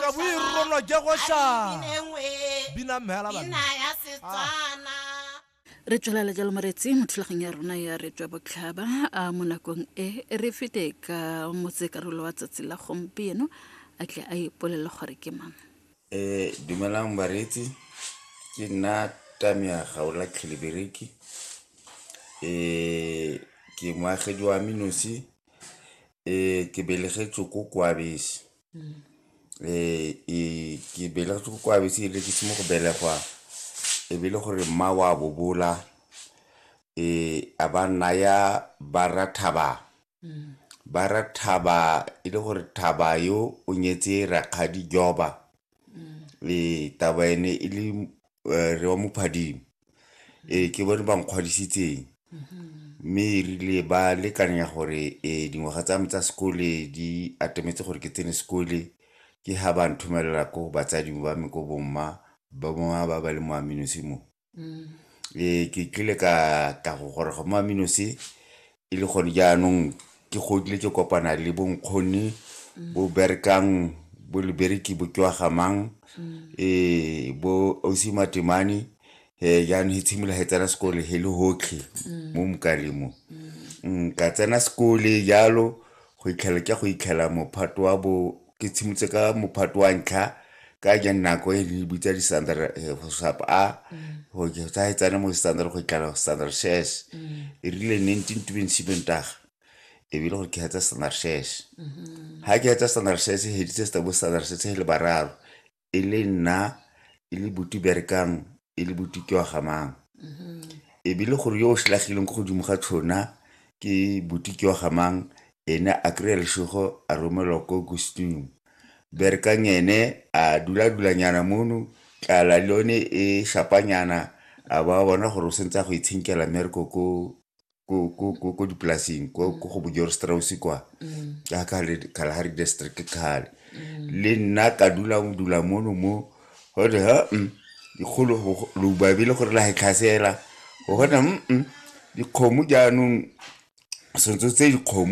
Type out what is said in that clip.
kaboirolwa ke go shaa bina mmela re tswelela jalo moretsi mo thulagong ya rona ya re tswa botlhaba a mo nakong e re fete ka motsekarolo wa tsatsi la gompieno a tle a ipolele gore ke mang um dumelang bareetsi ke nna tamia gaola tlhelebereki um ke moagedi wa menosi Ee, ke belegetswe ko koabese ee ke belegetse ko koabetse ebile ke se mo go belegwa e be e le gore mma o a bobola ee a ba naya ba rra thaba ba rra thaba e le gore thaba yo o nyetse rakgadi joba Ee, taba ene e le eh, re wa mophadimo ee ke bone ba nkgwadisitseng mme e rile ba lekanya gore eh, dingwaga tsa me tsa sekole di atemetse gore ke tsene sekole ke ha ba nthomelela ko batsading ba me ko bomma ba mongwe ba ba le mo aminosimo Ee, ke kile ka tla go goroga mo Aminosi e le gone jaanong ke godile ke kopana le bo nkgonne bo berekang bo libereki bo tswa gamang um bo ausi matemane um jaanong he tshimolola he tsena sekole he le hotlhe mo mokaleng mo ka tsena sekole jalo go itlhela ke go itlhela mophato wa bo ke tshimotse ka mophato wa ntlha ka ja nako e re bitsa di-standard eh, go sap a mm. go tsa e tsane mo standard go itlala go standard shares mm. e rile ne ntse ntume nshimeng taga ebile gore ke hetsa standard shares mm-hmm. ga ke hetsa standard shares e heditse sta bo standard shares e le bararo e le nna e le buti berekang e le buti ke wa gamang e be le gore yo o selagileng ko godimo ga tshona ke buti ke wa gamang ene a kry-a lesego a romelwa ko gustung berekang ene a dula-dulanyana mono tlala le yone e shapanyana a ba bona gore o sentse a go itshenkela mmereko ko ko, ko, ko, ko dipolasing ko, ko go bojor strausi kwa ka kale kalahari district ke kgale le nna ka dula mo dula mono mo gote ha mm, dikgolo go- go- loubabe le gore la he tlhasela gona mm, mm, dikgomo jaanong sentse tse dikgomo